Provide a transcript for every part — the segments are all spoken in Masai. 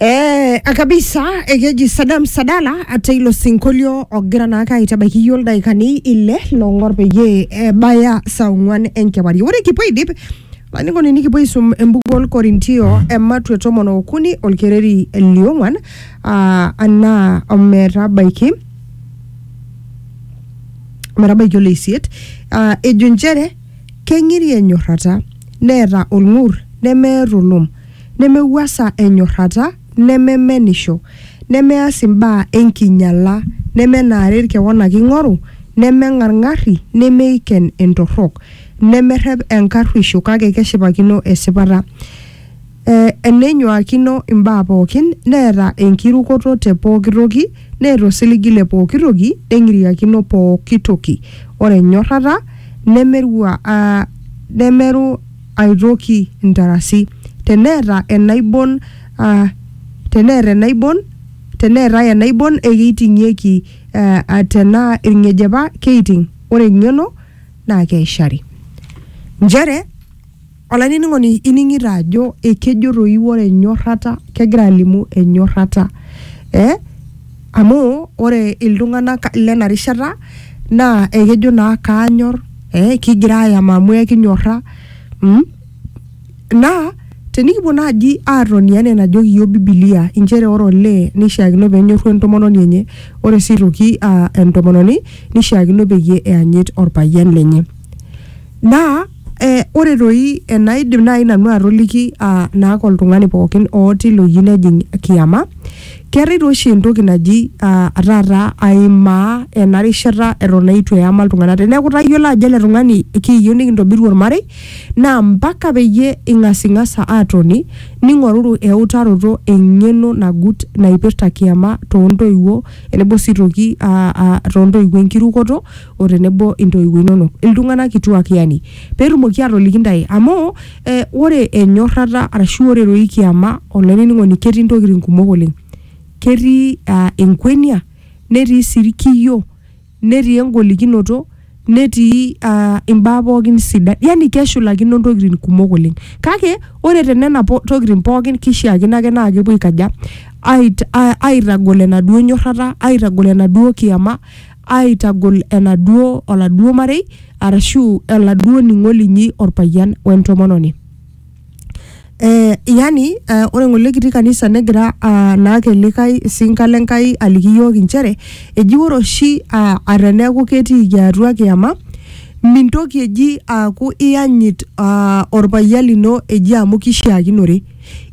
Eh, akabisa ekeji sadam sadala ate ilo sinkolio ogira naake aitabaiki iyiook ildaikani ile loong'or peyie ebaya saa ong'uan enkewarie ore kipuo aidip olainining'oni nikipuo aisum embuku olkorintio ematwe tomon okuni olkereri liong'uan ah, anaa ometabaiki ometabaiki oleisiet Ah, ejo inchere Keng'iri enyorrata, neeta olng'ur, nemear olom, nemewuasa enyorrata, nememenisho, nemeas imbaa enkinyala, nemenaarer kewon ake eing'oru, nemeng'arng'arri, nemeiken entorrok, nemerrep enkarruisho kake keshipakino esipata. E, enenyuaakino imbaa pooki, neeta enkirukoto te pooki toki, neeta osiligi le pooki toki, neng'iriakino pooki toki. Ore enyorrata nemerua a, nemeru ai toki intarasi. Teneeta enaibon a, teneeta enaibon, teneetae enaibon ekeiting'ieki, a tenaa ilng'ejepa keiting', ore eng'eno naa keishari. Nchere. Olainining'oni ining'ito ajo ekejo toi ore enyorrata kegira alimu enyorrata eh? amu ore iltung'anak lena rishata naa ekejo naa kaanyor eh? kigira ayama amu ekinyorra mm? naa tenikipuo naaji aatoni enaa enajoki iyiok bibilia inchere ore olee neishiakino penyorru entomononi enye ore sii aitoki uh, entomononi neishiakino peyie eyanyit orpayian lenye naa Eh, ore toi enaidim naaji nanu atoliki ah, naake oltung'ani pookin otii loyieu nejing kiama keetae tooshi entoki naji ah, taata aimaa ena rishata eton eitu eyama iltung'anak teneeku itayiolo ajo ele tung'ani kiiyieu nikintobiru ormarei naa mpaka peyie ing'asing'asa atoni ning'oruru eutaroto eng'eno nagut naipirta kiama tontoiwuo enebo sii toki ah, ah, tontoiwuo enkirukoto. o tenebo intoiwuo inonok iltung'anak kituak yani petumoki atoliki ntae amu eh, ore enyorrata arashu ore roi kiama olainining'oni ketii ntokitin kumok oleng ketii uh, enkwenia netii sii irkiyio netii engolikinoto netii uh, imbaa pookin sidan yani keshulakino ntokitin kumok oleng kake ore tenena po- tokitin pookin kishiakino ake naa kepuo aikaja ait- a- aitagol enaduo nyorrata aitagol enaduo kiama aaitagol enaduo oladuo marei arashu oladuo ning'o linyi orpayian wentomononi eh, yani eh, ore ng'ole kitii kanisa negira ah, naake likae sinka le Nkai aliki iyiook inchere eji ore oshi ah, ata eneeku ketiiki atua kiyama mintoki eji aaku iyanyit ah, orpayian lino eji amu kishiakinore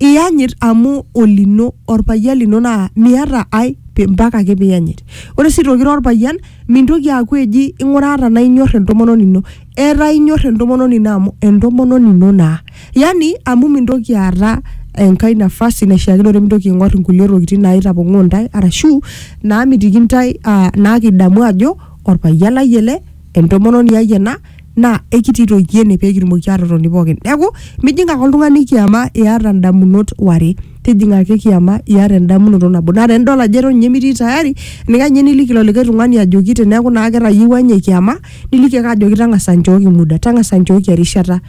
iyanyit amu olino orpayian lino naa miata ai pi- mpaka ake piyanyit ore sii aitoki ira orpayian mintoki aaku eji ing'uraa tanaa inyorr entomononi ino etaa inyorr entomononi ino amu entomononi ino naa yani amu mintoki aata enkae nafasi naishiakinore mintoki aing'orr inkulie tokitin naitapong'oo intae arashu naamitiki intae uh, naakidamu ajo orpayian lai ele entomononi ai ena. naa ekitii toi ene pee kitumoki aatotoni pookin. Neeku mijing ake oltung'ani kiama iata ndamunot ware, tijing'a ake kiama iata endamunoto nabo. Naa tenidol ajo eton ninye mitii tayari, eninkae ninye niliki ilo likae tung'ani ajoki teneeku naa ketayiewua ninye kiama, niliki ake ajoki tang'asa nchooki muda, tang'asa nchooki erishata.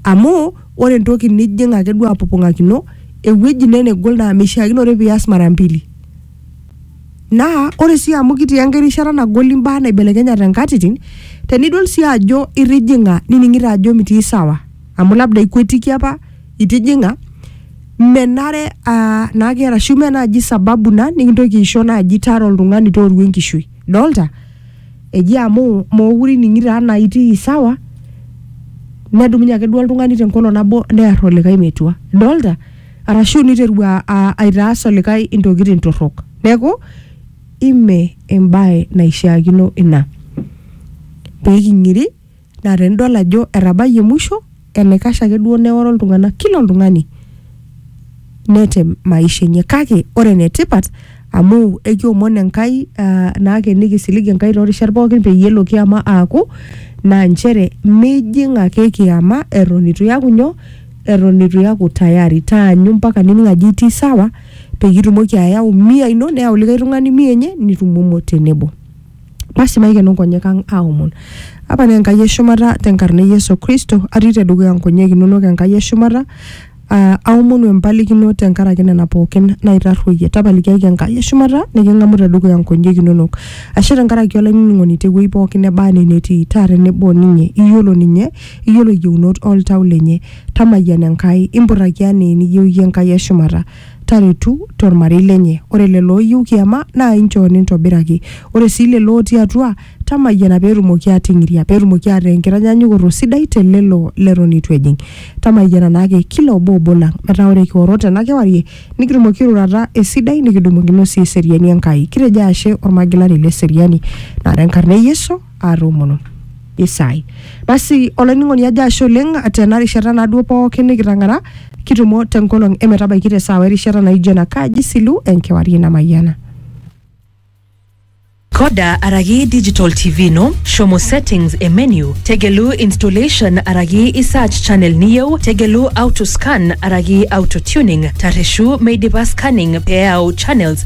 Amu ore entoki nijing ake duo apopong'akino ewueji naa enegol naa mishiakinore pias mara mbili Naa ore sii amu kitii enkae rishata nagol imbaa naibelekenyate nkatitin, tenidol sii ajo itijing'a nining'ito ajo mitii sawa amu labda ikwetiki apa itijing'a, menare aa naake arashu mee naaji sababu ina nekintoki aisho naaji tara oltung'ani tooru enkishui. Idolta? Eji amu mookure ining'ito enaa itii sawa nedumunye ake duo oltung'ani te nkolong' nabo near olikai metua. Idolta? arashu niterua a- aitaas olikae intokitin torrok neeku ime embae naishiakino ina pee king'iri naa tenidol ajo etabayie musho enaikash ake duo neoro iltung'anak kila oltung'ani netem maisha enye kake ore enetipat amu ekiomon Enkai ah, naake nikisilig Enkai toorishat pookin peyie elo kiama aaku naa nchere mijing ake kiama eton itu iyaku nyoo eton eitu iyaku tayari taanyu mpaka nining ajo itii sawa peyie itumoki ayau mia ino neyau likae tung'ani mia enye nitumomo tenebo basi maikeno nkonyek ang aomon apa naa enkai eshumata tenkarna e yesu kristo atii tedukuya nkonyek inonok enkai eshumata aa aomonu empalikino tenkaraki nena pookin naitarruoyie tapalikiaki enkai eshumata niking'amu tedukuya nkonyek inonok ashe tenkaraki olainining'oni tewueji pookin neba anaa enetii taa tenebo ninye iyiolo ninye iyiolo yieunot oltau lenye. Tamayiana Enkai, impurraki anaa eniyieu iyie Enkai e shumata. Taretu to lmarei lenye. Ore lelo ooyieu kiama naa inchoo nintobiraki. Ore sii lelo ootii atua, tamayiana pee etumoki aating'iria, pee etumoki aataa enkitanyanyukoto sidai te lelo leton eitu ejing. Tamayiana naa ake kila obo obo lang metaa ore kioro tena kewarie nikitumoki airurata esidai nikidumokino sii eseriani Enkai. Kitejo ashe olmagilani le seriani naa te nkarna e Yesu. aatomono. Isaai. Basi olainining'oni ajo ashe oleng tena rishata naaduo pookin nikitang'ara kitumo tenkolong emetabaiki te saawa erishata naijo ena kaji silu enkewarie namayiana. Coda araki digital TV ino, shomo settings e menu, tegelu installation araki i search channel niyieu, tegelu auto scan araki auto tuning, tarreshu meidipa scanning pee eyau channels